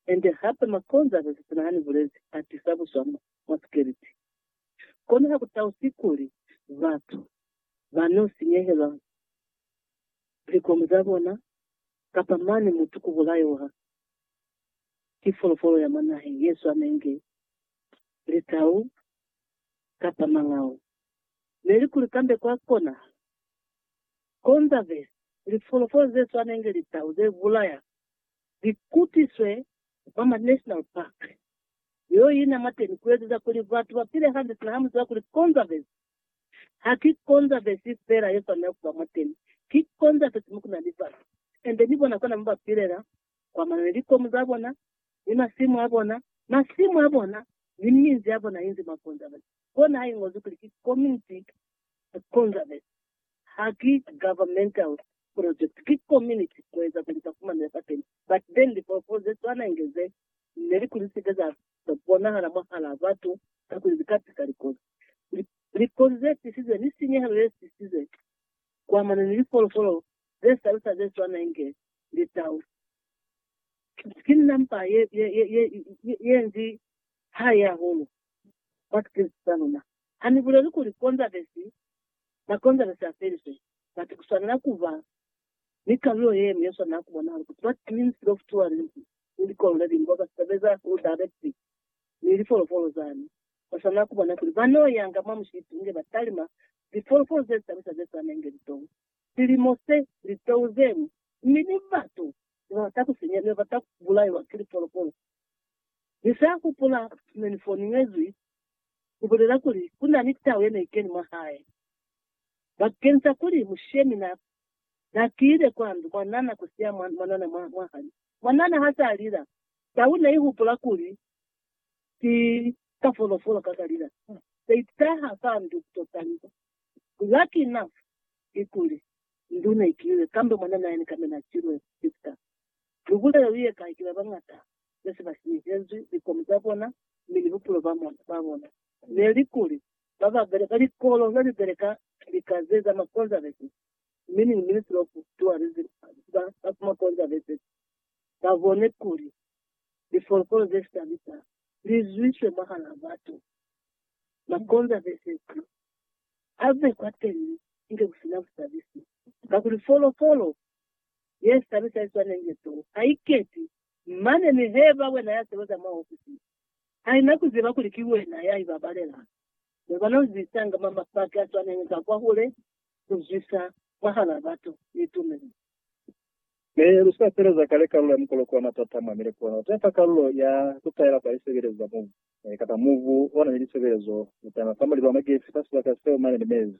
Ende hape makonzo a sese sina hani bulezi a tisa buswa mwa sikeliti. Kono ha ku tausi kuli batu ba n'o sinyehelwa likomu za bona kapa mane mutu ku bulaiwa ki folofolo ya mwa naheng ye swanenge litau kapa mangau. Neli kuli kambe kwa konahala konzaveza kuli folofolo ze swanenge litau ze bulaya Li kutiswe mwa ma national park yo ina mwateni kuezeza kuli batu ba pile hande sina ha mu ziba kuli conservancy haki conservancy fela ye swanela kuba mwateni, ki conservancy mo kuna ni batu and ni bona kona mo ba pilela kwa mana ni likomu za bona ni masimu a bona, masimu a bona ni minzi ya bona inzi mwa conservancy. Kona ha ingozwi kuli ki community conservancy. Ha ki governmental project, ki community kueza kuli ba fumane za teni. But then lifolofolo ze swana inge ze ne li kuli sike za bonahala mwahalaa batu kakuli li ka tisa likozi. Likozi ze tisize ni sinyehelo ye sisize kuamana ni lifolofolo ze salusa ze swana inge litau. Ki number ye, ye, ye, ye, ye, ye nzi hai hahulu kwa tikilisi za luna. Ha ni buleli kuli Konzavesi ba Konzavesi ha felizwe, but ku swanela ku ba ni kalulo ye ñwi ye swanela ku bonahala ku ziba Twins Love Tourism ni likolo le liñwi bao ba sebeza ku directi ni lifolofolo zani. Ba swanela ku bona kuli ba n'o yanga mwa mushipi inge ba talima lifolofolo ze tabisa ze swana inge litou, silimo se, litou ze ñwi, mi ni batu ne ba bata ku sinya, ne ba bata ku bulaiwa ki lifolofolo. Ni sa hupula ne ni foningezwi ku bulela kuli ku na ni tau ye ne i keni mwa hae. Bakeñisa kuli mushemi na, na tile kwa ndu, mwanana ku siya mwa, mwanana mwa, mwa hali. Mwanana ha sa lila, tau ne i hupula kuli ki ka folofolo ka ka lila. Se i taha fa ndu ku to taliwa. Lucky enough, ki kuli, ndu ne i kilile, kambe mwanana yene kambe na silwe ki sika. Mihula yeo i ekai ki babañata ne se ba sinyehezwi likomu za bona mi ni bupulo ba bona. Ne li kuli, ba ba beleka likolo ne li beleka lika ze za makonzavesi, meaning Ministry of Tourism, ba ba makonzavesi ba bone kuli lifolokolo ze shabisa li zwiswe mwahal'a batu. Makonzavesi a be kwateñi inge ku si na busabisi, kakuli folokolo ye sani sa iswaneng ye too ha i keti, mane ni heba wena ya sebeza mwa ofisi ye. Ha i na ku ziba kuli ki wena ya i babalelang. Ne ba no zisanga mwa mapaki a swaneng ka kwahule ku zwisa mwahal'a batu ni tumelo. Ne lu sa sebeza kale kalulo ya mukoloko wa matata mwa mile kono te fa kalulo ya ku taela kwa lisebelezo za mubu, kapa mubu o na ni lisebelezo, lu tama fa mulibo wa magesi fa sibaka seo mane ni mezi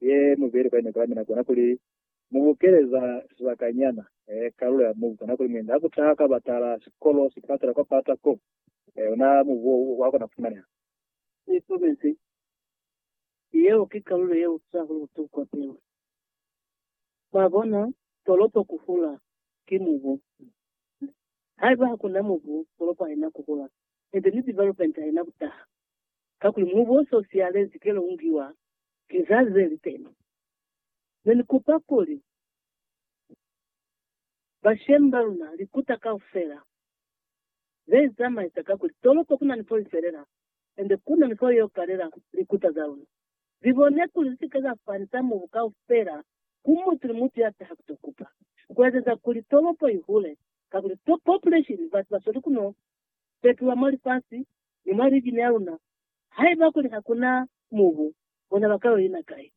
ye mubeli kwa inokela, mi na kona kuli mu bukele za sibakanyana kalulo ya mubu. Kana kuli mwendi hakutaha ka batala, sikolo, sipatala, kwa pata ko, ona mubu wo wa kona kufumaneha. Ni komezi, yeo ki kalulo ye utwaho butuku kwa pilu. Mwabona, tolopo ku hula ki mubu. Haiba hakuna mubu, tolopo haina ku hula, niti ni development haina kutaha. kakuli mubuso u siyalezi kelo ungiwa ki za ze li teni. Ne ni kupa kuli bashemi ba luna likuta kaufela ze izamaisa kakuli tolopo ku na ni fo i felela ende ku na ni fo yo kalela likuta za luna. Li bone kuli li si ke za fanisa mubu kaufela ku mutu ni mutu ya taha ku to kupa, ku ezeza kuli tolopo i hule kakuli population, batu ba sweli ku no fetulwa mwa lifasi ni mwa lijini ya luna, haiba kuli ha ku na mubu, bona ba ka yo ina kai?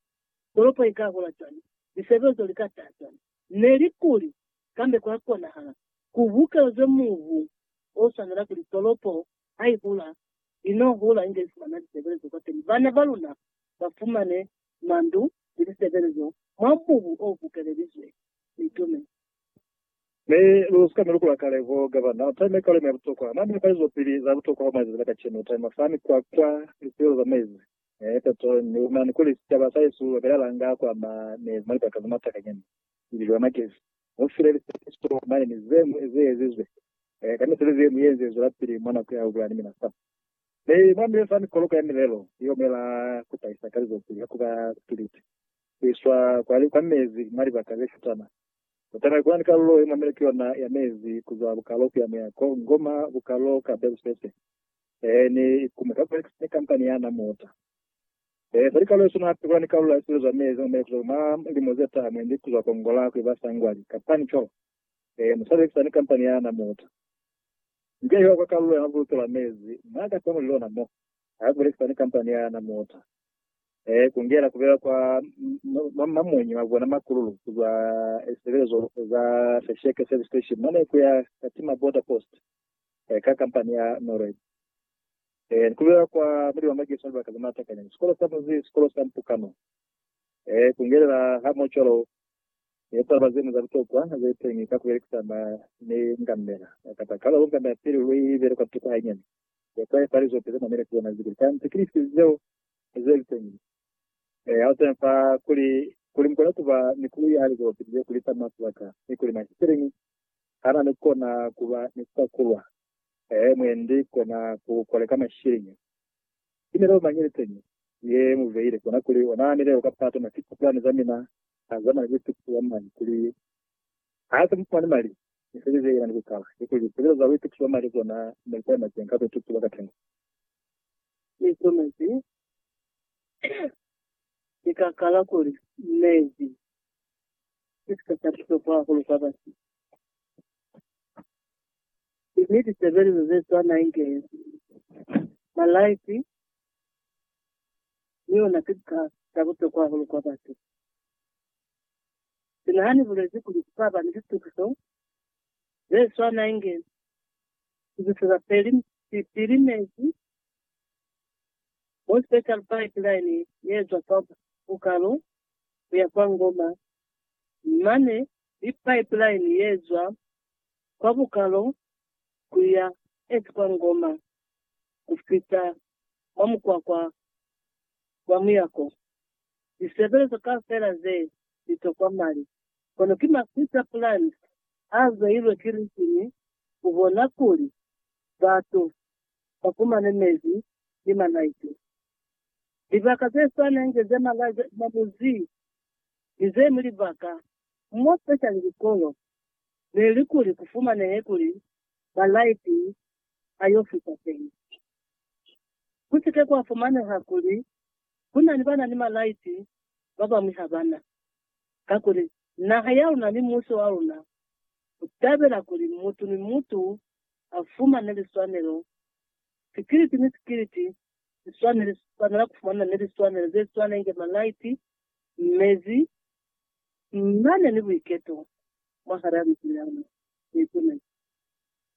Tolopo i ka hola cwañi? Lisebezo li ka taha cwañi? Neli kuli, Kambe kwa konahala ku bukelezwe mubu o swanela kuli tolopo ha i hula, i no hula inge i fumana lisebelezo kwateni. Bana ba luna ba fumane mandu ni lisebelezo mwa mubu o bukelelizwe. Ni tume. Mi lu sika mi lukula kale ko ka ba na time ekalo mi ya butokwa. Mwa mipa izo pili za butokwa kwa mwa lizazi la kacenu, time fa mikwakwa, lipilo za mezi, eh, petrol, ni umani kuli sicaba sa Yesu ba belela nga kwa ma mezi mwa libaka za matakanyana, lililo ya magezi, mu file lisepeliso mane ni ze ñwi ze ezizwe, eh, ka misebezi ye ñwi ye nze zwela pili mwa nako ya ubulani mina fa. Mi mwa mile fa mikoloko ya milelo ye omela ku tahisa kalizopili ya ku ba spiliti, ku iswa kwa, kwa mezi mwa libaka ze shutana. Kutana ku na ni kalulo ye mwamile ki yona ya mezi ku zwa bukalo ku ya mu ya ko ngoma bukalo ka belu se se ee ni ku mu takulela ni kampani ya na muta ee fa likalo ye suna. Hape ku na ni kalulo ya sibelo za mezi mwamile ku zwa mwa limo ze taha mwendi ku zwa ko ngola ku iba sangwali kapa ni colo ee mu sa lekisa ni kampani ya na muta. Nzila ye hwa kwa kalulo ya mabuluke lwa mezi mwa ka tamuli lona mo ha ku lekisa ni kampani ya na muta. eh, kungela kubela kwa mamonyi mabona makululu kuzwa esebelezo za Fesheke Service Station mane kuya Katima Border Post eh, ka kampani ya Norway eh, kubela kwa muli wa mageso libaka za matakanya sikolo sa muzi sikolo sa mpukano eh, kungelela ha mocholo yetaba zenu za butokwa zetengi ka kubelekisana ni ngamela kata kala ngamela pili lui bele kwa tuko hainyani Zeo ka epa lizope ze mamile kuzona zikuli za antikristi zeo ze liteñi. E, ha usina fa kuli, kuli mukona kuba ni kulu ya lizope ze kulisa mafu a ka, ni kuli mashikilingi hana ni kona kuba ni kusa kulwa, e, mwendi kona ku koleka mashikilingi. Ki milao mañi liteñi ye mu beile? Kona kuli ona milao kapa tona tipulani za mina ha zamana ni butuku bwa mañi kuli Ha se mufumani mali, misebezi ye inani kuikala, kikuli lipulelo za buituti ba mali kona ne li taima cweng ka buituti bwa katengo. Misebezi ye ka kala kuli mezi ki sika sa butokwa hahulu kwa batu, mi lisebelezo ze swana inge malaiti ni ona ki sika sa butokwa hahulu kwa batu. Sina ha ni bulezi kuli ku ka ba ni litukiso ze swana inge tukiso za pilimezi mo special pipeline ye zwa kwa Bukalo ku ya kwa Ngoma, mane ni pipeline ye zwa kwa Bukalo ku ya east kwa Ngoma ku fita mwa mukwakwa wa muyako. Lisebelezo kaufela ze li tokwa mali, kono ki maswita plan a beilwe ki Ritini ku bona kuli batu ba fumane mezi ni malaiti. Libaka ze swana inge ze malazi a mabuzi ni ze ñwi libaka, mo special likolo, ne li kuli ku fumanehe kuli malaiti a yo fita teñi. Ku si ke kwa fumaneha kuli Ku na ni ba na ni malaiti, ba bañwi ha ba na. Kakuli, naha ya luna ni musi wa luna u tabela kuli mutu ni mutu a fumane liswanelo. Sikiliti ni sikiliti si swane li swanela ku fumana ni liswanelo ze swana inge malaiti, mezi, mane ni buiketo mwahal'a libi la luna. Nikunene.